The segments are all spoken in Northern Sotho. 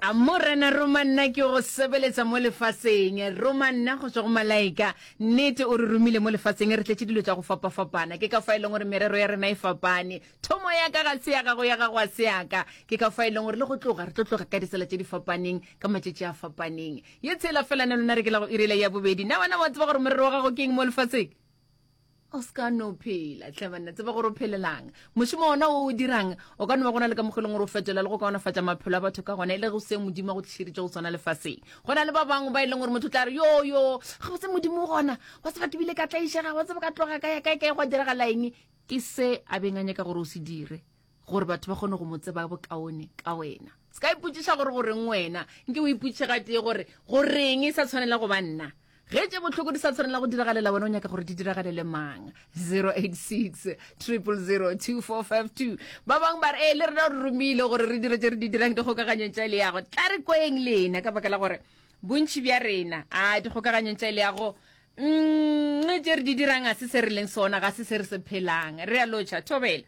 a morena roma nna ke go sebeletsa mo lefaseng roma nna go tswa go malaika nnete o re romile mo lefaseng re tletse dilo tsa go fapafapana ke ka fa e leng gore merero ya rena e fapane thomo ya ka ga se ya gago ya gago a se yaka ke ka fa e leng gore le go tloga re tlo tloga ka ditsela tse di fapaneng ka matšetši a fapaneng ye tshela fela ne lona re ke la go irela ya bobedi na wena wa tseba gore morero wa gago ke eng mo lefaseng o se ka no phela tle banna tseba gore o phelelang mošomo ona o o dirang o ka no ba gona le ka mokgweleng gore o fetola le go kaonafatša maphelo a batho ka gona e le go se modimo a go tlišeditse go swana lefaseng go na le ba bangwe ba e leng gore motho tla re yo yo ga botse modimo gona wa tseba ke bile ka tlaišega wa tseba ka tloga ka ya kae kae gwa diragala eng ke se a beng a nyaka gore o se dire gore batho ba kgone go mo tseba bokaone ka wena se ka ipotšiša gore goreng wena nke o ipotšiše ga tee gore goreng e sa tshwanela go ba nna ge tše bohloko di sa tshwanela go diragalela wena o nyaka gore di diragalele mang 086 000245 ba bangwe ba re e le rena re romile gore re dire tse re di dirang dikgokaganyong tša leago tla re kweng lena ka baka la gore bontšhi bja rena a dikgokaganyong tša leago mm, tše re di dirang ga se se re leng sona ga se se re se phelang re a lotšha thobela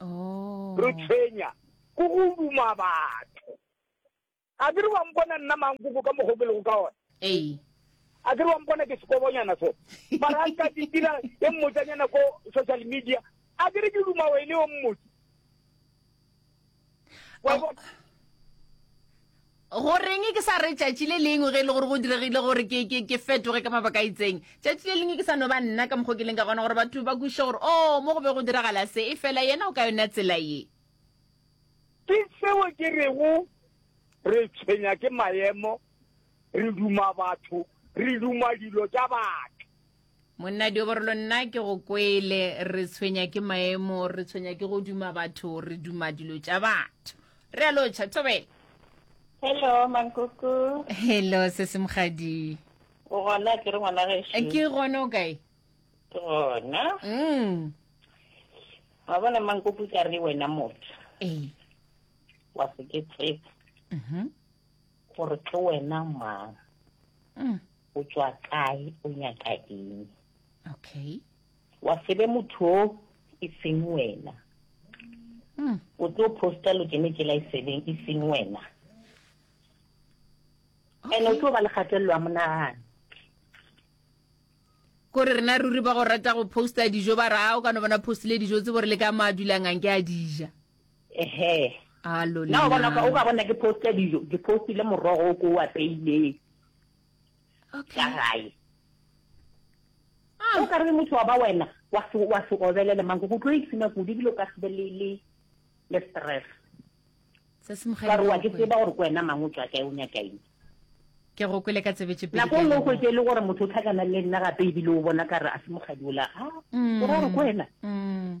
oh. re tshwenya ko go duma batho a ke re wa mpona nna mankoko ka mogo ke lego ka one ee a ke re wa mpona ke sekobonyana so mara ka ke dira e mmotsanyana ko social media a ke re ke duma wene o mmotse go reng ke sa re tšatši le lengwe ge e le gore go diregile gore ke ke ke fetoge ka mabaka a itseng tšatši le lengwe ke sa no ba nna ka mokgwa ke leng ka gona gore batho ba kwiše gore o oh, mo go be go diragala se e fela yena o ka yona tsela ye ke seo ke rego re tshwenya ke maemo re duma batho re duma dilo tša batho monna dioborolo nna ke go kwele re tshwenya ke maemo re tshwenya ke go duma batho re duma dilo tša batho re a lotšha thobela hello mankoko hello se se mogadi o gona ke re ngwana gešo eh, ke gona o kae ke gona mm wa bona mankoko ka re wena motho ee wa se ke tsetse mhm gore ke wena mang mm. o tswa kae o nyaka eng okay wa sebe motho o e seng wena mm. o tlo posta lo kene tsela e sebeng e seng wena and o tlo ba le kgatelelo ya monagano kore rena ruri ba go rata go posta dijo ba ra o ka no bona postile dijo tse bore le ka mo a dulang ang ke a dija ehe Alo na o bona o ka bona ke posta dijo ke postile morogo o ko o apeileng okay. ka gae ah. o ka re motho wa ba wena wa se wa se obelele mang go tlo itsina kudu ebile o ka se be le le le stress se se mo gaile wa ke tseba gore kwena mang o tswa kae o nyaka eng ke go kwele ka tsebetse pele nako nngwe go tse le gore motho o tlhakana le nna gape ebile o bona ka re a se mogadi o la ga ah, mm. o ra gore kwena mm.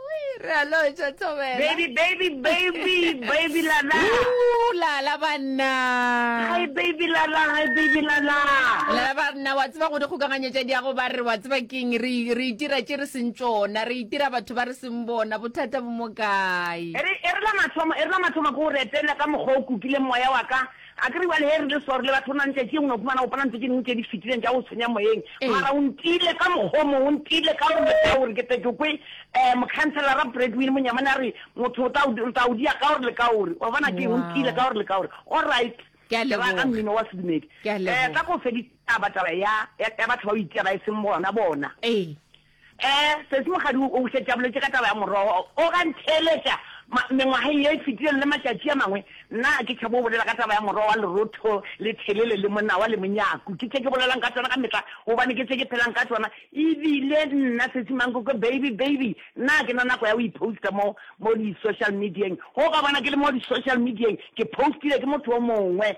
re a lotšwa thobela baby baby baby baby lala lala banna hi baby lala hi baby lala lala banna wa tseba go di kgokaganyetša di ya go ba re wa tseba keng re re itira tše re seng tšona re itira batho ba re seng bona bothata bo mo kae e re e re la mathomo e re la mathomo go retela ka mokgwa o kukile moya wa ka A ke re bjale ge re le swari le batho, go na le tšatši e nngwe o humana o kopana le tše dingwe tše di fetileng tša go tshwenya moyeng, mara o ntiile ka mokgwa o mongwe, o ntiile ka go leka gore ke tle ke kwe. Um Mokhanselara Bradwin Monyamane a re, Motho o tla o tla o dia ka gore le ka gore. Wa bona ke eng? O ntiile ka gore le ka gore. Alright. Ke a leboga. Ke ra ka mmino wa sedumedi. Ke a leboga. Um Ka go fedisa taba taba ya ya batho ba o itia ba e seng bona bona. Ee. Ee, sesi mogadi o šetše a boletše ka taba ya morogo o ga ntheeletša ma, mengwageng ye e fetilego le matšatši a mangwe. Nna ga ke tšhabe go bolela ka taba ya morogo wa lerotho le thelele le monawa le monyaku. Ke tše ke bolelang ka tšona ka mehla gobane ke tše ke phelang ka tšona. E bile nna, sesi Mankoko, baby, baby, nna ga ke na nako ya go iposta mo, mo di-social medieng. Ge o ka bona ke le mo di-social medieng, ke postile ke motho o mongwe.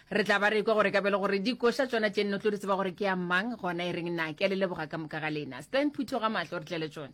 Re tla ba re ekwa gore ka bjale gore dikoša tšona tše nne o tlo di tseba gore ke ya mang, gona e reng na. Ke a le leboga ka moka ga lena. Stan Phutho ga mahlo re tle le tšone.